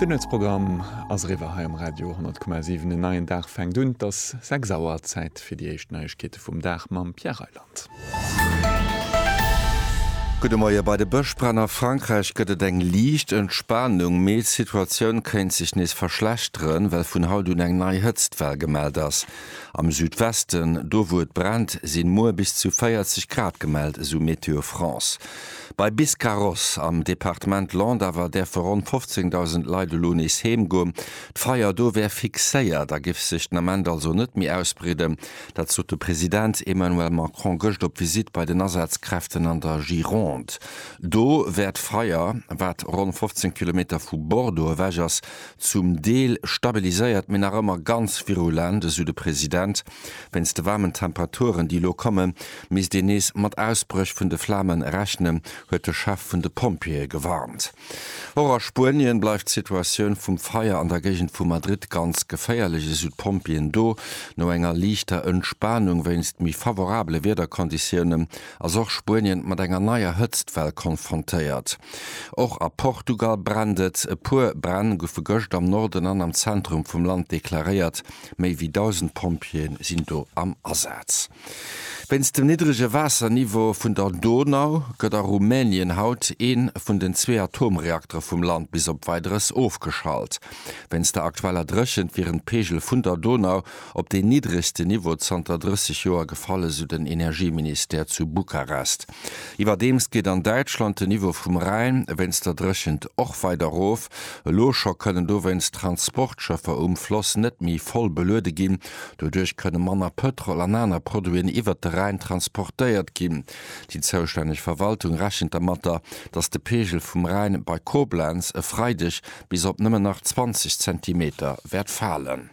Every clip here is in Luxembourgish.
Den Nuetsprogramm ass eriwwer hei um Radio 10,7. En neien Dag fänkt un. Et ass 6 Auer. Zäit fir déi éischt Neiegkeete vum Dag mam Pierre Reyland. Gudde Moie. Bei de Bëschbränn a Frankräich gëtt et eng liicht Entspanung, mee d'Situatioun kéint sech nees verschlechteren, well vun haut un eng nei Hëtztwell gemellt ass. Am Südwesten, do wou et brennt, sinn muer bis zu 40 Grad gemellt, esou Météo France. Bei Biscarrosse am Departement Landes awer däerfe ronn 15.000 Leit elo nees heem goen. D'Feier do wär fixéiert a géif sech den Ament also net méi ausbreeden. Dat sot de President Emmanuel Macron gëscht op Visitt bei den Asazkräften an der Gironde. Do wär d'Feier, wat ronn 15 Kilometer vu Bordeaux ewech ass, zum Deel stabiliséiert, mee nach ëmmer ganz virulent, esou de President. Wéinst de waarmen Temperaturen, déi elo kommen, misst een nees mat Ausbréch vun de Flamen rechnen, huet de Chef vun de Pompjeeë gewarnt. Och a Spuenien bleift d'Situatioun vum Feier an der Géigend vu Madrid ganz geféierlech, esou d'Pompjeeën do. No enger liichter Entspanung wéinst méi favorabele Wiederkonditiounen ass och Spuenien mat enger neier Hëtztwell konfrontéiert. Och a Portugal brennt et. E puer Bränn goufe gëscht am Norden an am Zentrum vum Land deklaréiert. Méi wéi 1.000 Pompjeeë sinn do am Asaz. Wéinst dem niddrege Waasserniveau vun der Donau gëtt a Rumänien haut ee vun den zwee Atomreaktere vum Land bis op Weideres ofgeschalt. Wéinst der aktueller Dréchent wieren d'Peegel vun der Donau op deen niddregste Niveau zanter 30 Joer gefall, esou den Energieministère zu Bukarest. Iwwerdeems geet an Däitschland den Niveau vum Rhäin wéinst der Dréchent och weider erof. Elo scho kënnen dowéinst Transportschëffer um Floss net méi voll beluede ginn. Doduerch kënne manner Pëtrol an aner Produiten iwwert de Rhäin transportéiert ginn. Déi zoustänneg Verwaltung rechent dermatter, datt de Peegel vum Rhäin bei Koblenz e Freideg bis op nëmmen nach 20 Zentimeter wäert falen.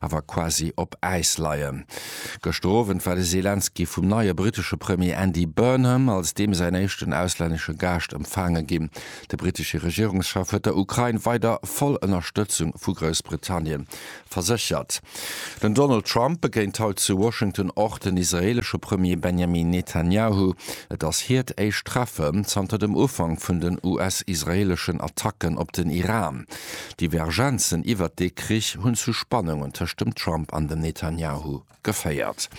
awer quasi op Äis leien. Gëschter Owend war de Selenskyj vum neie brittesche Premier Andy Burnham als deem säin éischten auslännesche Gaascht empfaange ginn. De brittesche Regierungschef huet der Ukrain weider voll Ënnerstëtzung vu Groussbritannien verséchert. Den Donald Trump begéint haut zu Washington och den israeelesche Premier Benjamin Netanyahu. Et ass hiert éischt Treffe zanter dem Ufank vun den US-israeeleschen Attacken op den Iran. D'Divergenzen iwwert dee Krich hunn zu Spannungen tëscht dem Trump an dem Netanjahu geféiert.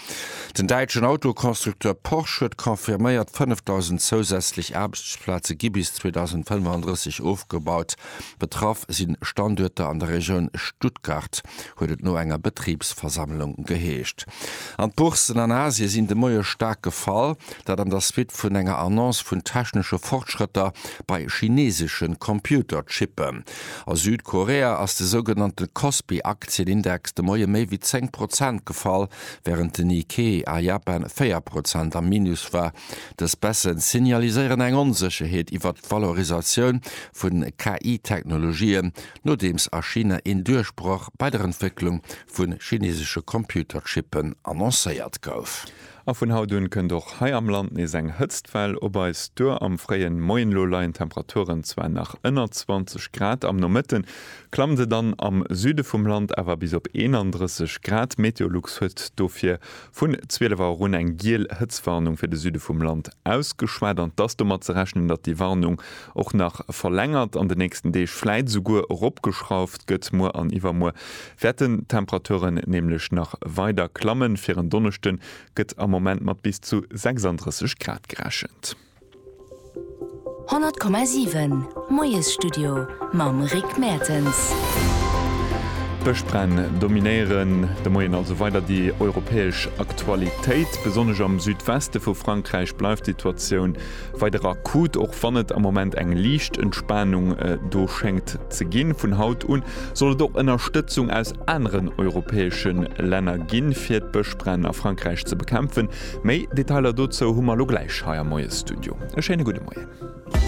Den däitschen Autoconstructeur Porsche huet confirméiert, 5.000 zousätzlech Aarbechtsplaze gi bis 2035 ofgebaut. Betraff si Standuerter an der Regioun Stuttgart, huet et no enger Betribsversammlung geheescht. An d'Bourssen an Asie sinn de Moie staark gefall. Dat an der Suite vun enger Annonce vun technesche Fortschrëtter bei chineesesche Computerchippen. A Südkorea ass de sougenannte Kospi-Aktienindex de Moie méi wéi 10 Prozent gefall, wärend den Nikkei a Japan 4 Prozent am Minus war. Dës Baisse signaliséieren eng Onsécherheet iwwert d'Valorisatioun vu KI-Technologien, nodeems a China een Duerchbroch bei der Entwécklung vu chineesesche Computerchippen annoncéiert gouf. A vun haut un kënnt och hei am Land nees eng Hëtztwell op eis duer. Am fréien Moien elo leien d'Temperaturen zwar nach ënner 20 Grad, am Nomëtten klammt et dann am Süde vum Land awer bis op 31 Grad. Meteolux huet dofir vun 12 Auer un eng giel Hëtztwarnung fir de Süde vum Land ausgeschwat. An et ass domat ze rechnen, datt déi Warnung och nach verlängert an de nächsten Deeg, vläit esouguer eropgeschrauft gëtt. Muer an iwwermuer Wäerten d'Temperaturen nämlech nach weider klammen. Fir en Donneschde gëtt am Moment mat bis zu 36 Grad gerechent. 100,7 Moiesstudio mam Rick Mertens. Bëschbränn dominéieren de Moien also weider déi europäesch Aktualitéit. Besonnesch am Südweste vu Frankräich bleift d'Situatioun. Weider akut, Och wann et am Moment eng liicht Entspanung do schéngt ze ginn, vun haut un soll et och Ënnerstëtzung aus aneren europäesche Länner ginn, fir d'Bëschbränn a Frankräich ze bekämpfen. Méi Detailer dozou hu mer elo gläich hei am Moiesstudio. E schéine gudde Moien.